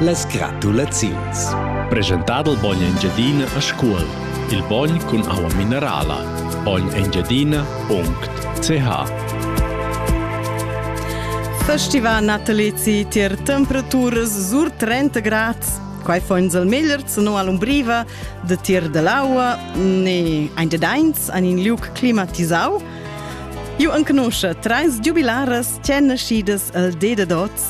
Las gratulaziuns. Presentà dal bogn Engiadina a Scuol. Il bogn cun aua minerala. bognengiadina.ch Festiva natalezi tier temperaturas sur 30 grad. Quai fa ins al meglier sino all'umbriva de tier dell'aua ne ein de deins an in liuc climatisau. Ju enconosce treis giubilaras tschenneschidas el de de dots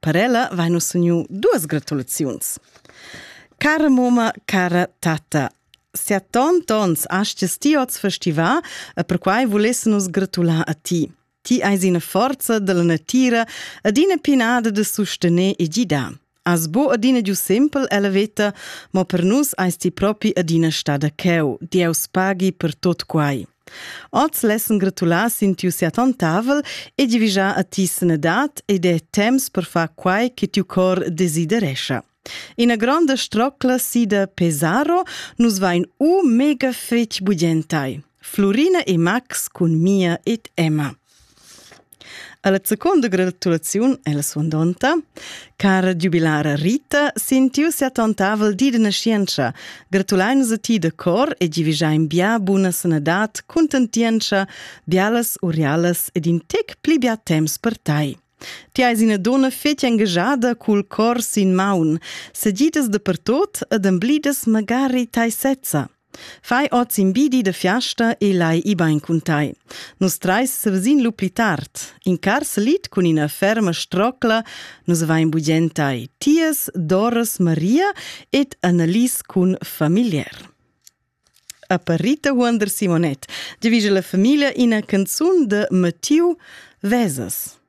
Per ella vain nus uniu duas gratulaziuns. Cara moma, cara tata, sia tant ons astes ti oz festivà e perquai vulesse nus gratular a ti. Ti eis ina forza della natira ed ina pinada de sustener e gidar. As bo adina giu simpel ella veta, ma per nus eis ti propi adina stada cheu. Dieus paghi per tot quai. Oz lessan gratular sin tiu siatontavel e divigiar a ti sanadad ed è temps per far quai che tiu cor desiderescha. Ina gronda strocla sida Pesaro nus vain u mega fetg bugentai. Florina e Max cun Mia ed Emma. Alla seconda gratulaziun è la suandonta. Cara giubilara Rita, sin tiu seattontavel di de nascienza, gratulain a ti de cor e givigiain bia buna sanadat, contentienza, bialas urialas ed in tec pli bia temps per tai. Ti eis ina donna fetg engagada cul cor sin maun, segidas de pertot ed emblidas magari tai sezza. Fai oz in bi di de fiasta e lai i bain cun tai. Nus treis sevesin lu pli tard. In car salit cun ina ferma strocla, nus vain bugen tai. Tias Doris Maria ed Annelies cun familiar. Aparita Huonder Simonet divisa la famiglia ina canzun de Mattiu Vesas.